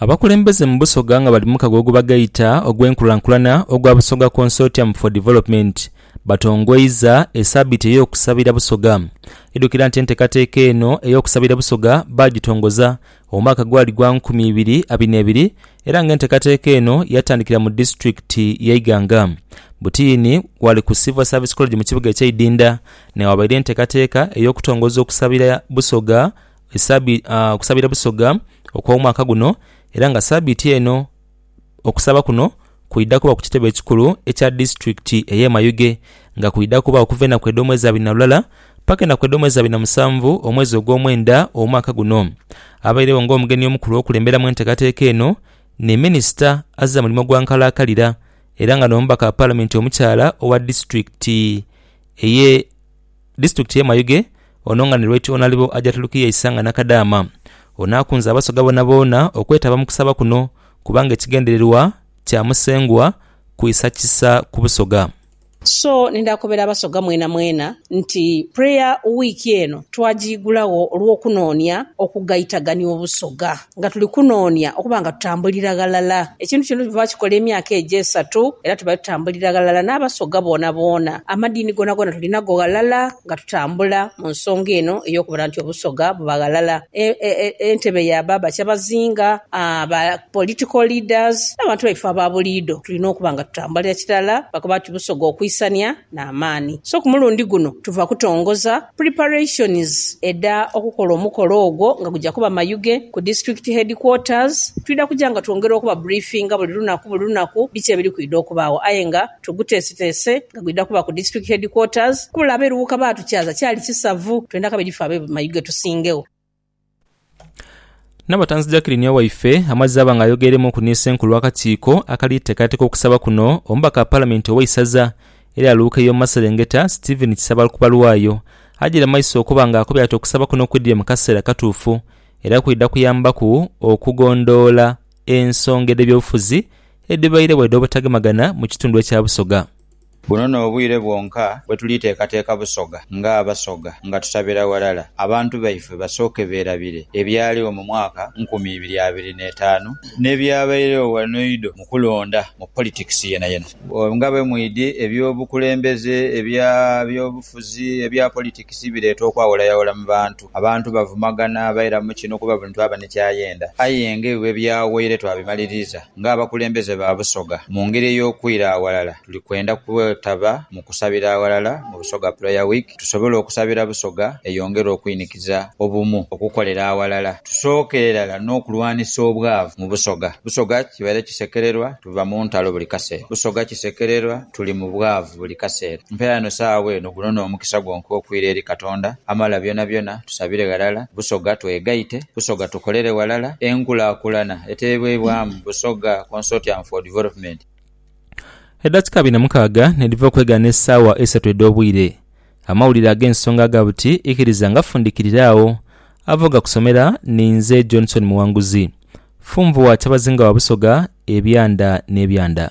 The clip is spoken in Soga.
Abakulembeze mu Busoga nga bali mu kagogo bagaita ogw'enkulankulana ogwa Busoga Consortium for Development batongoiza esabiiti ey'okusabira Busoga. Idhukira nti entekateka eno ey'okusabira Busoga baagitongoza omwaka gwali gwa nkumi ibiri abina ebiri era nga entekateka eno yatandikira mu disitulikiti ye Iganga. Butiini wali ku Civil Service College mu kibuga ekye Idinda newabaire entekateka ey'okutongoza okusabira Busoga esabi, ah, okusabira Busoga okw'omwaka guno era nga sabiiti eno okusaba kuno kwidha kuba ku kitebe ekikulu ekya disitulikiti ey'e Mayuge nga kwidha kuba okuva enaku edh'omwezi abiri na lulala paka enaku edh'omwezi abiri na musanvu omwezi ogw'omwenda omwaka guno. Abairegho nga omugenyi omukulu okulemberamu enteekateeka eno ni minisita azira mulimo gwa nkalakalira era nga n'omubaka wa palamenti omukyala owa disitulikiti eye Disitulikiti y'e Mayuge, ono nga ni Lwaityo Onalibo Ajaturukiya Isanga Nakadaama, ono akunze Abasoga boonaboona okwetaba mu kusaba kuno kubanga ekigendererwa kya Musengwa kwisa kisa ku Busoga. So nidha kobera Abasoga mwenamwena nti Prayer Week eno twajiigulagho olw'okunoonia okugaitagania Obusoga. Nga tuli kunoonia okuba nga tutambulira ghalala. Ekintu kino tuva bakikola emyaka egyo esatu era tubaire tutambulira ghalala n'Abasoga boonaboona. Amadiini goonagoona tuli nago ghalala nga tutambula mu nsonga eno ey'okubona nti Obusoga buba ghalala. E, e, e, entebe ya ba bakyabazinga, aa, ba political leaders, n'abantu baife aba buliidho tulina okuba nga tutambulira kirala lwakuba nti Busoga okuisania n'amaani. So ku mulundi guno tuva kutongoza. Preparations edha okukola omukolo ogwo nga gugya kuba Mayuge ku District Headquarters. Twidha kuja nga twongera okuba briefinga buli lunaku buli lunaku biki ebiri kwidha okubaagho aye nga tuguteeseteese nga gwidha kuba ku District Headquarters. Kubula abe Luwuka baatukyaza kyali kisavu, twendha kabiri ffe abe Mayuge tusingegho. Nabatanzi Jacqueline Owaife amazze aba nga ayogeremuuku ni Ssenkulu w'akakiiko akali teekateka okusaba kuno, omubaka wa Palamenti ow'eisaza erya Luuka ey'omu maserengeta, Stephen Kisabalku Balwayo, agyire mu maiso okuba nga akubye ati okusaba kuno kwidhire mu kaseera katuufu era kwidha kuyambaku okugondhoola ensonga edh'ebyobufuzi edhibairegho edh'obutagemagana mu kitundu ekya Busoga. Buno n'obwire bwonka bwe tuliteekateeka Busoga ng'Abasoga nga tutabira ghalala abantu baife basooke beerabire ebyaligho mu mwaka nkumi ibiri abiri n'etaanu n'ebyabairegho ghano eidho mu kulonda mu politics yenayena. Nga bwe mwidhi, eby'obukulembeze, ebya byobufuzi, ebya politics bireeta okwawulayaawula mu bantu. Abantu bavumagana baira mu kino kuba buli muntu aba ni ky'ayenda. Aye nga ebyo bwe byaghoire twabimaliriza, ng'abakulembeze ba Busoga, mu ngeri ey'okwira aghalala tuli kwenda kwetaba mu kusabira aghalala mu Busoga Prayer Week tusobole okusabira Busoga eyongere okwinikiza obumu, okukolera aghalala, tusookere irala n'okulwanisa obwavu mu Busoga. Busoga kibaire kisekererwa tuva mu ntalo buli kaseera. Busoga kisekererwa. Tuli mu bwavu buli kaseera. Mpeera eno saagho eno, guno n'omukisa gwo nkuwa okwira eri Katonda amala byonabyona. Tusabire ghalala Busoga, twegaite Busoga, tukolere ghalala enkulakulana eteebwebwamu Busoga Consortium for Development. Edakika abiri na mukaaga nedhiva okwegaana esaawa eisatu edh'obwire, amawulire ag'ensonga aga buti ikiriza nga fundikirire agho. Ava ogakusomera ni nze Johnson Muwanguzi, Funvu wa Kyabazinga wa Busoga ebyanda n'ebyanda.